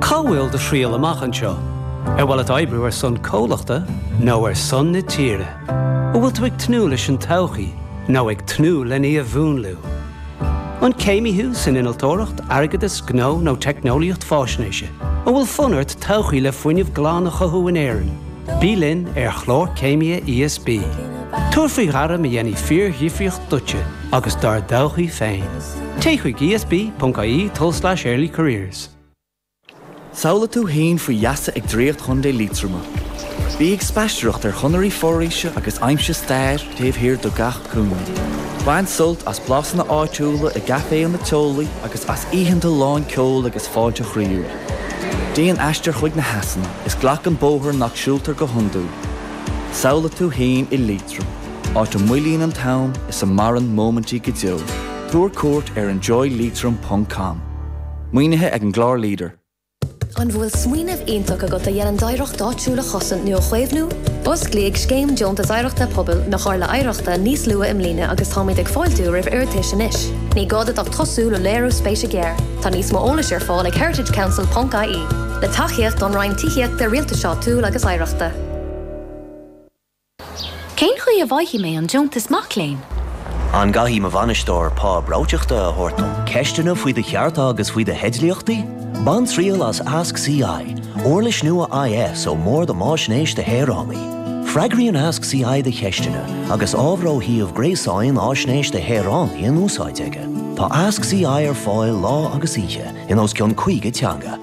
Cá bhfuil do thriall amach anseo? Ar mhaith leat oibriú ar son comhlachta nó ar son na tíre? An bhfuil tú ag tnúth leis an todhchaí nó ag tnúth lena í a mhúnlú? An céimí thú san innealtóireacht, airgeadas, gnó nó teicneolaíocht faisnéise? An bhfuil fonn ort todhchaí le fuinneamh glan a chothú in Éirinn? Bí linn ar chlár Céimithe ESB. Tabhair faoi ghairm a dhéanfaidh fíordhifríocht duitse agus dár dtodhchaí féin. Téigh chuig esb.ie tulslais early careers. Samhlaigh tú fhéin faoi gheasa ag draíocht Chontae Liatroma. Bí ag spaistearacht ar chonairí foraoise agus aimsigh stair taobh thiar de gach cúinne. Bain sult as blasanna áitiúla i gcaiféanna teolaí agus as oícheanta lán ceoil agus fáilte chroíúil. Déan aistear chuig na heasanna is glac an bóthar nach siúltar go hiondúil. Samhlaigh tú fhéin i Liatroim. Áit a mhoillíonn an t-am is a maireann móimintí go deo. Tabhair cuairt ar enjoyleitrim ponc com. Maoinithe ag an gclár leader. An bhfuil smaoineamh iontach agat a dhéanann d'oidhreacht áitiúil a chosaint nó a chaomhnú? Osclaíodh Scéim Deontas Oidhreachta Pobail na Comhairle Oidhreachta níos luath i mbliana agus táimid ag fáiltiú roimh iarratais anois. Ní gá duit ach tosú le léiriú spéise gearr. Tá níos mó eolais ar fáil ag heritagecouncil ponc ie. Le tacaíocht ón Roinn Tithíochta, Rialtais Áitiúil agus Oidhreachta. Cén chaoi a bhfaighfidh mé an deontas mac léinn? An gcaithfidh mo bhainisteoir pá breoiteachta a thabhairt dom? Ceisteanna faoi do chearta agus faoi do theidlíochtaí? Bain triail as Ask CI, uirlis nua IS ó mBord um Fhaisnéis do Shaoránaigh. Freagraíonn Ask CI do cheisteanna agus ábhar ó shuíomh gréasáin Fhaisnéis do Shaoránaigh in úsáid aige. Tá Ask CI ar fáil lá agus oíche in os cionn 50 teanga.